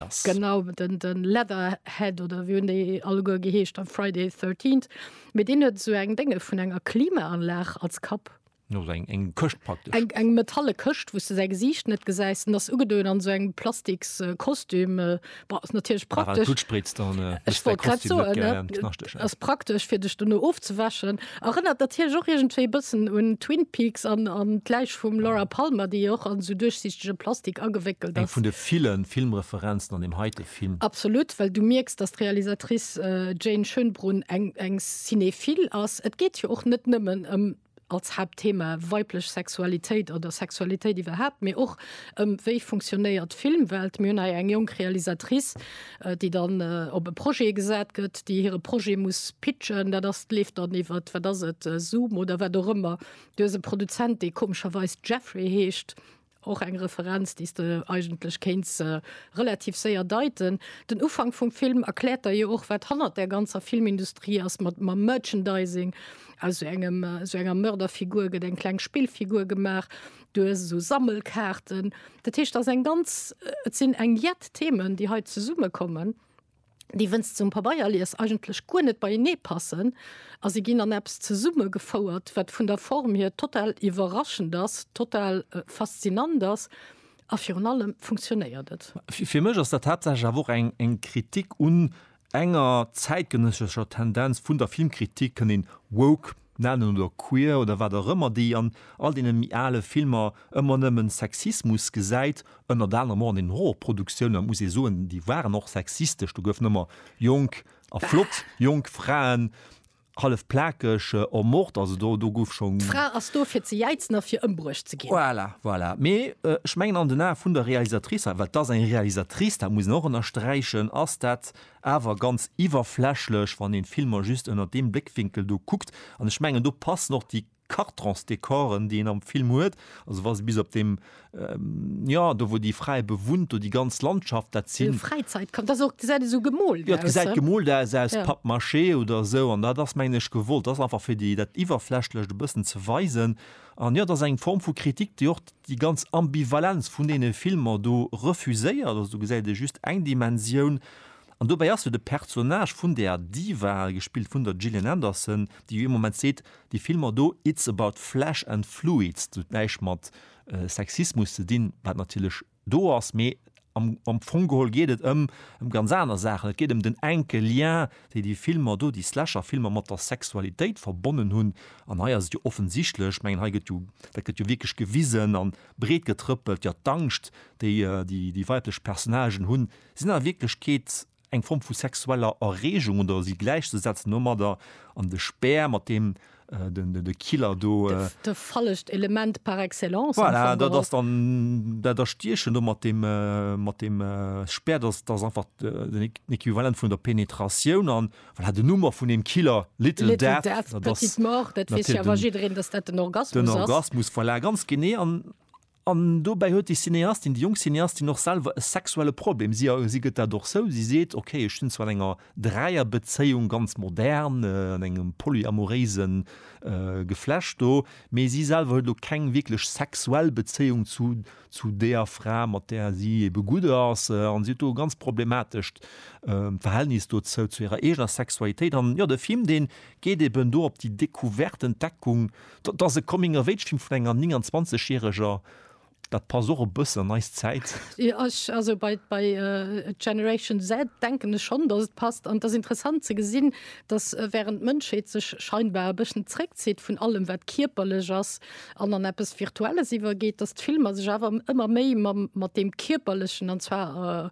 ass. Genau, den Leatherhead oder wéi hunn déi alleguer geheescht am Friday the 13th, mee deen huet esou eng Dénge vun enger Klimaanlag als Kapp. No sou eng Këscht praktesch. Eng metalle Këscht wous de säi Gesiicht net gesäis, en ass ugedoen an esou engem plastiks Kostüm, boah ass natierlech praktesch. Ech wollt grad soen, ass praktesch fir dech dono ofzewäschen. Erënnert natierlech och iergendwéi e bëssen un Twin Peaks an an d'Läich vum Laura Palmer, déi och an esou duerchsichtege Plastik agewéckelt Eng ass. vun de ville Filmreferenzen an deem heite Film. Absolut, well du mierks, dass d'Realisatrice Jane Schönbrunn eng eng Cinéphile ass. Et geet jo och net nëmmen ëm, als Haaptthema, weiblech Sexualitéit oder Sexualitéit iwwerhaapt, mee och ëm, wéi funktionéiert d'Filmwelt. Mir hunn hei eng jonk Realisatrice, déi dann op e Projet gesat gëtt, déi hire Projet muss pitchen, dat ass leeft dann iwwer, wat ass et, Zoom oder wat och ëmmer. Du hues e Produzent, dee komescherweis Jeffrey heescht, och eng Referenz, déi s de eigentlech kéints relativ séier deiten. Den Ufank vum Film erkläert der jo och, wat hannert där ganzer Filmindustrie ass, mat mam Merchandising. Aus esou engem, esou enger Mörderfigur gëtt eng kleng Spillfigur gemaach. duer sou Sammelkaarten. Dat heescht ass eng ganz äh, et sinn eng jett Themen, déi hei zesumme kommen, déi wënst zum Pabeierlies eigentlech guer net beienee passen, a se ginn an Apps zesumme gefouert, wat vun der Form hier total iwwerraschend ass, total äh, faszinant ass a virun allem funktionéiert et. Fir mech ass dat haaptsächlech awer och eng eng Kritik un Enger zäitgenëssescher Tendenz vun der Filmkritik kënnt een woke nennen oder queer oder wat och ëmmer, déi an all deene méi ale Filmer ëmmer nëmmen Sexismus gesäit, ënnert anerem och an den Horrorproduktiounen. Et muss ee soen, déi waren och sexistesch, do goufen ëmmer jonk a flott jonk Fraen. Hallef plakeg, en mort, also do, do gouf schon. D'Fra ass do fir ze jäizen a fir ëmbruecht ze ginn. Voilà, voilà. Mee ech mengen an den Ae vun der Realisatrice, well et ass eng Realisatrice, dat muss een och ënnersträichen, ass dat awer ganz iwwerflächlech, wann een d'Filmer just ënnert deem Bléckwinkel do kuckt. An ech mengen do passen och déi. Cartons-Decoren, déi een am Film huet, also wa se bis op deem, jo, do wou déi Fra e bewunnt, do déi ganz Landschaft, dat sinn. Vill Fräizäit kommt, ass och, gesäit esou gemoolt aus. Jo, et gesäit gemoolt aus, aus Pappmaché oder esou, an dat ass, mengen ech, gewollt, dat ass einfach fir déi, dat Iwwerflächlecht e bëssen ze weisen. An jo, dat ass eng Form vu Kritik, déi och déi ganz Ambivalenz vun deene Filmer do refuséiert, also do gesäit ee just eng Dimensioun, An dobäi ass jo de Personnage vun der Diva, gespillt vun der Gillian Anderson, déi jo ee Moment seet, déi Filmer do, it's about flesh and fluids, dat huet näischt mat Sexismus ze dinn, wat natierlech do ass, mee am am Fong geholl geet et ëm ëm ganz aner Saachen. Et geet ëm den enke Lien, déi déi Filmer do, déi Slasher-Filmer mat der Sexualitéit verbonnen hunn. An hei ass et jo offensichtlech, ech mengen, hei gëtt jo, dat gëtt jo wierklech gewisen a breetgetrëppelt, jo d'Angscht, déi déi weiblech Personnagen hunn, sinn a Wierklechkeet eng Form vu sexueller Erreegung oder si gläichzesetzen domadder, an de Speer, mat deem de Killer do. Dat fallegt Element par excellence. Voilà, dat ass dann dat Erstiechen do mat deem, mat deem Speer, dat ass einfach den Equivalent vun der Penetratioun. An voilà, den Numm vun deem Killer, Little Death, dat ass. Petite Mort, dat weess jo awer jiddereen, dass dat den Orgasmus ass. Den Orgasmus, voilà, ganz genee. An An dobäi huet déi Cineastin, déi jonk Cineastin, och selwer e sexuelle Problem. Si a si gëtt dat och zou. Si seet, Okay, ech stinn zwar an enger Dräierbezéiung, ganz modern, an engem polyamoréise Geflecht do, mee si selwer huet elo keng wierklech sexuell Bezéiung zu zu deeër Fra, mat där si ebe gutt ass. An si huet do e ganz problematescht Verhältnis dozou, zu hirer eegener Sexualitéit. An jo, de Film, dee geet eben do op déi Decouverte, Entdeckung Dat ass e Coming of Age Film vun enger 29 järeger, dat passt och e bëssen an eis Zäit. Ech, also bei bei Generation Z denken ech schonn, datt et passt an et ass interessant ze gesinn, datt während d'Mënschheet sech scheinbar e bëssen zréckzitt vun allem wat kierperlech ass an an eppes Virtuelles iwwergeet, datt d'Filmer sech awer ëmmer méi mat deem Kierperlechen an zwar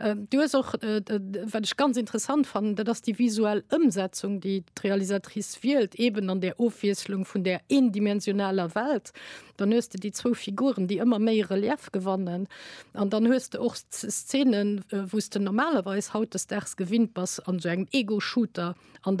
Ähm, du hues och äh, wat ech ganz interessant fannen, dat ass déi visuell Ëmsetzung, déi d'Realisatrice wielt, eben an der Ofwieslung vun der eendimensionaler Welt. Dann hues du déi zwou Figuren, déi ëmmer méi Relief gewannen. An dann hues du och Szenen, äh, wou s du normalerweis hautdesdaags gewinnt bass an so engem Ego-Shooter an der